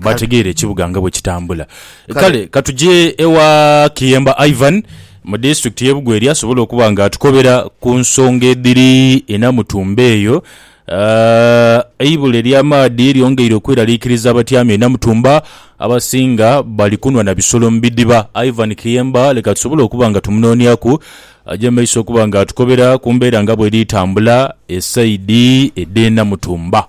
Baategeera ekibuga nga bwe kitambula. Kale ka tuje ewa Kiyemba Ivan mu disitulikiti y'e Bugweri asobole okuba ng'atukobera ku nsonga edhiri e Namutumba eyo. Ah, eibula ery'amaadhi lyongeire okweraliikiriza abatyami e Namutumba, abasinga bali kunhwa na bisolo mu bidhiba. Ivan Kiyemba leka tusobole okuba nga tumunooniaku aje mu maiso okuba ng'atukobera ku mbeera nga bw'eri tambula e saidi edh'e Namutumba.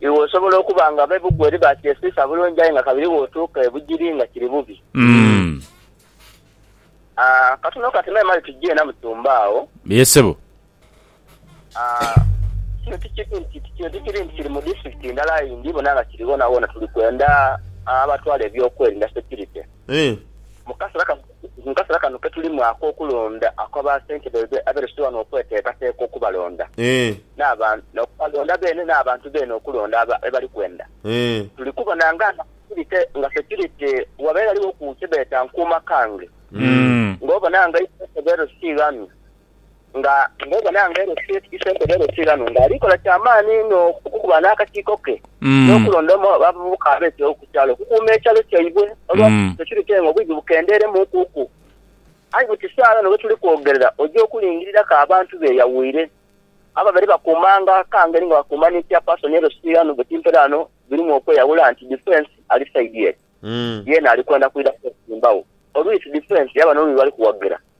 Iwe osobola okuba nga be bugwe eri bakyesiisa bulungi aye nga kabiri wotuuka e Bugiri nga kiri bubi. Aah katono kati me male tujje ena mu kyumba agho. Ye ssebo. Aah kino tikiri nti kiri mu district ndala aye ndi bona nga kiri wonawona tuli kwenda abatwala ebyokwerinda security. Mu kaseera kano ke tulimu ak'okulonda okwa ba ssentebe abeerekeibwa ghano okweteekateeka okubalonda n'abantu beene n'abantu beene okulonda be bali kwenda, tuli kubona nga nga securite bw'aba eghaligho ku kye beeta nkuuma kange, ng'obona nga ife abeerekeibwa ghano Nga bw'obona nga LC Ssentebe LC ghano nga ali kola kya maani inho okukuba n'akakiiko ke n'okulondoola abavubuka abeetewo ku kyalo okukuuma ekyalo kyaibwe olwa securite aye nga obwidhi bukendeeremuukuku. Aye buti saala eno wetuli kwogerera oja okulingiriraku abantu beeyawire ababaire bakuumanga Kangeri nga bakuuma ni Chairperson LC ghano buti mpela ghano birimu okweyawula nti Defence ali side ere yeena ali kwenda kwidha kwesimbawo. Olwisi Defence yaba n'olulwe lwali kuwagira.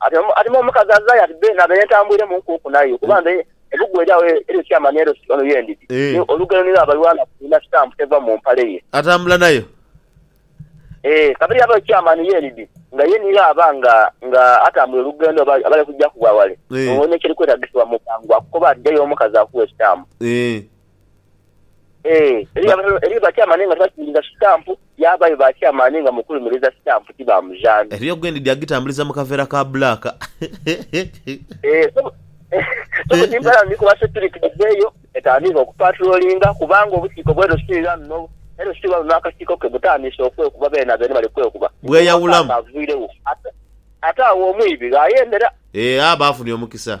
Ati me omukazi azayo ati be nabe nentambwire mu nkuuku naye kuba nze ebugwa elyawo elyo kyama nero ono ye ndidi ni olugero ni lwaba lwa naku lulina stamp teva mu mpale ye. Atambula nayo. Eeh kabiri yabayo chairman ye ndidi nga ye ni lwaba nga nga atambwire olugendo oba abale kujaku bwa wale no wona ekyeri kwetagisibwa mu bwangu akukoba ati jayo omukazi akuwe stamp. Ee, eriyo Ba- aba- eriyo bakyama aye nga tibakiwuliza sitampu, yaabayo bakyama aye nga mu kulumiriza sitampu ti ba muzaanhi. Eriyo gwe ndidhi agitambuliza mu kaveera ka black. Ee, so so bwe ndimala ni kuba security eveeyo etandiike okupatrollinga kubanga obukiiko bw'eno city ghano no eno city ghano n'akakiiko ke butandiise okwekuba beena beene bali kwekuba nti Bweyawulamu. owaakaaka avwiregho ate ate agho omwibi gh'ayendera. Ee, aba afunye omukisa.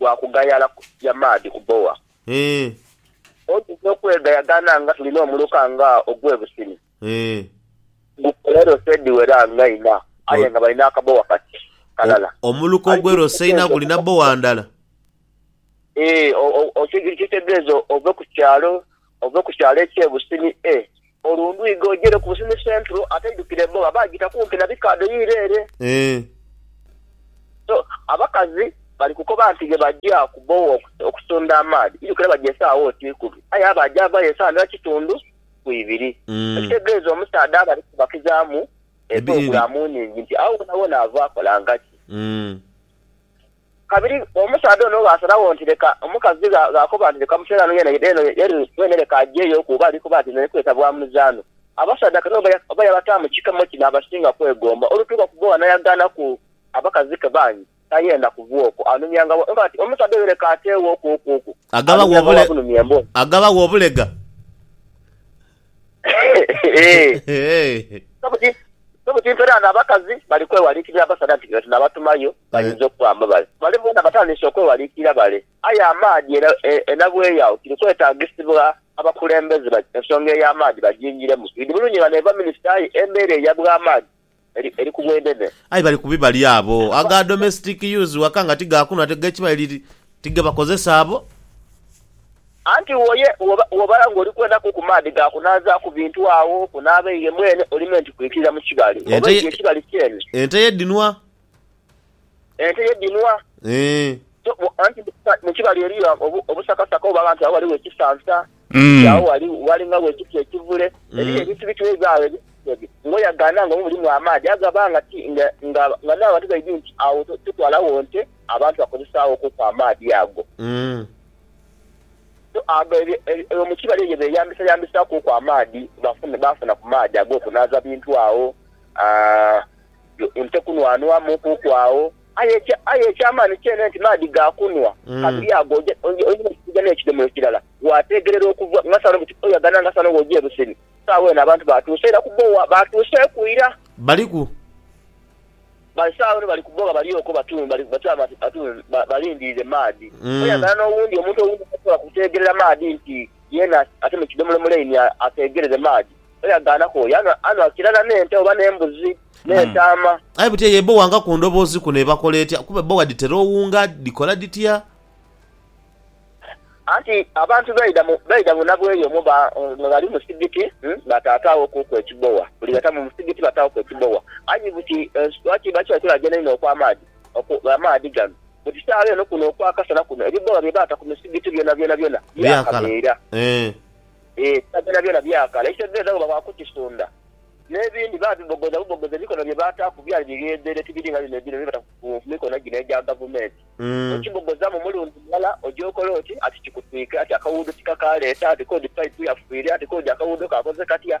gwa kugayala kusiya maadhi ku bowa. Oidha okwegayagana nga tuli n'omuluka nga ogw'e Busini. Gukola e Roseine wera nga inha aye nga balina akabowa kati kalala. Omuluka ogw'e Roseine gulina bowa ndala? Ee, ekyo kitegeeza ove ku kyalo. Ove ku kyalo eky'e Busini A. Olundu igo oje ere ku Busini Central ate eidhukiro Ebowa baagita kumpi na Bikaado ye ire ere. Eeh. So, abakazi bali kukoba nti bwebagya ku bbowa okusundha amaadhi, idhukiro bagya esaawa oti ikumi aye aba agya avayo esaawa ndala kitundu ku ibiri. Ekitegeeza omusaadha aba ali kubakizaamu epologulaamu nnhingi nti agho wonawona ava akola nga ki. Kabiri omusaadha ono bw'asalagho nti leka, omukazi gh'akoba nti leka musee ghano yeene eno eri mwene leka ajeyo kuba ali kuba nti n'ekweta bwa muzaano. Abasaadha kano oba yabataamu kikemo ki n'abasinga kwegomba olutuuka ku bbowa n'ayagaanaku abakazi ke bangi tayenda kuva okwo anumya nga bw'agamba nti omusaadha oyo leka ateewo okuukuuku anumya nga bw'abunumya emboozi. Aghabagho obulega Sobuti mpeera ghano abakazi bali kwewaliikirira abasaadha nti kino tunaabatumayo bayinza okubaamu bale. Bale boona batandise okwewaliikirira bale. Aye amaadhi eno e Nabweyo agho kiri kwetaagisibwa abakulembeze ensonga ey'amaadhi bagyingiremu. Idi bulungi nga n'eva minisita aye embeera eyabwa amaadhi eri ku bwenene. Aye bali kubi bali abo aga domestic use waka nga ti ga kunhwa ate gekiba eri ti gebakozesa abo. Anti wo ye wobala nga oli kwenhaku ku maadhi ga kunhazaaku bintu agho okunaaba eyo ye mwene oli me nti kwikirira mu kibali oba eyo ye kibali kyene. Ente ye dhinhwa. Ente ye dhinhwa. So, anti mu kibali eriyo obusakasaka oba aghantu agho ghaligho ekisansa, nti agho ghalinhagho ekiti ekivule. Eriyo ebintu bitweza agho ebyo ng'oyagaana ng'omwo mulimu amaadhi aye gaba nga ti, nga n'abantu baidhi nti agho totwalagho nte abantu bakozesaaghokuku amaadhi ago. So, ago eyo mu kibali eyo beyambisayambisakuku amaadhi, baafuna ku maadhi ag'okunaaza bintu agho. nte kunwanwamu kuku agho. Aye aye eky'amaani kyene nti maadhi ga kunwa, kabiri ago oja oja oja okuja n'ekidhomolo kirala waateegerera okuva nga sano buti oya gana nga sano bw'oja e Busini. Saagho eno abantu baatuuse ira ku bbowa, baatuuseeku ira. Baliku. Bali saagho eno bali ku bbowa bali okwo batu bali batyama batu ba balindirire maadhi. Oya gana n'owundi omuntu owundi tasobola kuteegerera maadhi nti yeena ate mu kidhomolo mu layini a ateegerere maadhi. Toyagaanaku oyo anhwa kirala n'ente oba n'embuzi n'entaama. Aye butya ye bbowa nga ku ndoboozi kuno ebakola etya? Kuba ebbowa dhitera owuunga, dhikola dhitya? Anti abantu baidha baidha mu nabweyo omwo nga bali mu musigiti bataataaghokuku ekibbowa. Buli bata mu musigiti bataaghoku ekibbowa. Aye buti ensitwa ki iba kyaitula ghe n'eino okw'amaadhi, amaadhi gano? Buti saagho eno kuno okw'akasana kuno ebibbowa bye baata ku misigiti byonabyona byona byakabeera. Ebibala byonabyona byakala, ekitegeeza bwebaba baakukisunda. N'ebindi baabiboggoza buboggozi, emikono bye baataaku byali bighedhere, tibiri nga bino edhino bye bata ku mikono gino egya gavumenti. Okiboggozaamu omulundi mulala, oja okole oti, ati kikutwike, ati akawuudho tikakaaleeta, ati k'odi payipu yafwire, ati k'odi akawuudho kaakoze katya.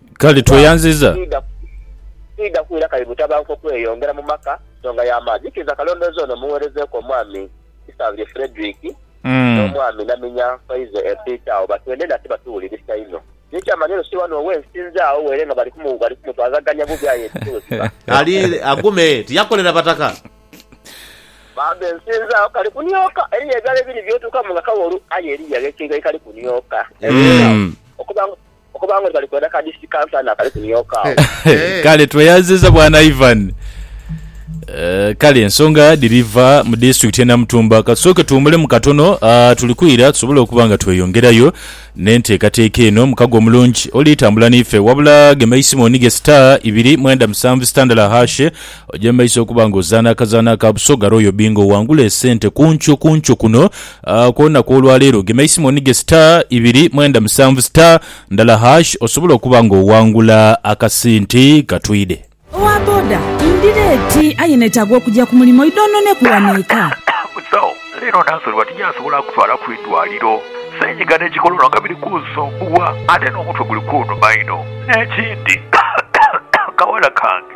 Kale tweyanziza. Tiidha kwira kale butabanguko kweyongera mu maka ku nsonga y'amaadhi. Ikiza Kalondoozi ono mugherezeeku Omwami Isabirye Fredrick n'Omwami Naminya Faizo e Bbiita agho batwendhe nate batuwulirisa inho. Ni kya manhiro si wano we nsinze agho were nga bali kumutwazaganya bubi aye ekyo bwe kiba. Ali agume tiyakolera bataka. Bambi nsinze agho kali kunioka. Eriyo ebyalo ebiri by'otuukamu nga kawolu aye eriyo agho ekintu ekali kunioka. Okuba nga. Okuba nga oti bali kwenda ka District Councillor no akali kunioka agho. Kale tweyanziza bwana Ivan. Kale ensonga dhiriva mu District ye Namutumba. Katusooke tuwumulemu katono tuli kwira tusobole okuba nga tweyongerayo n'enteekateeka eno. Mukago omulungi oli tambula n'ife. Wabula gema eisimoni ghe star ibiri mwenda musanvu star ndala hash oje mu maiso okuba nga ozaana akazaanho aka Busoga Royal Bingo owangule esente ku nkyo ku nkyo kuno. Aah kwonaku olwaleero gema isimoni ge star ibiri mwenda musanvu star ndala hash osobole okuba nga owangula akasente katwide. Owa boda ndi leeti aye netaaga okugya ku mulimo idhoononeku wano eka. Dokita musawo leero nansonyiwa tinyasobola kutwala ku idwaliro. Senyiga ne kikolono nga biri kunsumbuwa ate n'omutwe guli kunuma inho. N'ekindi kawala kange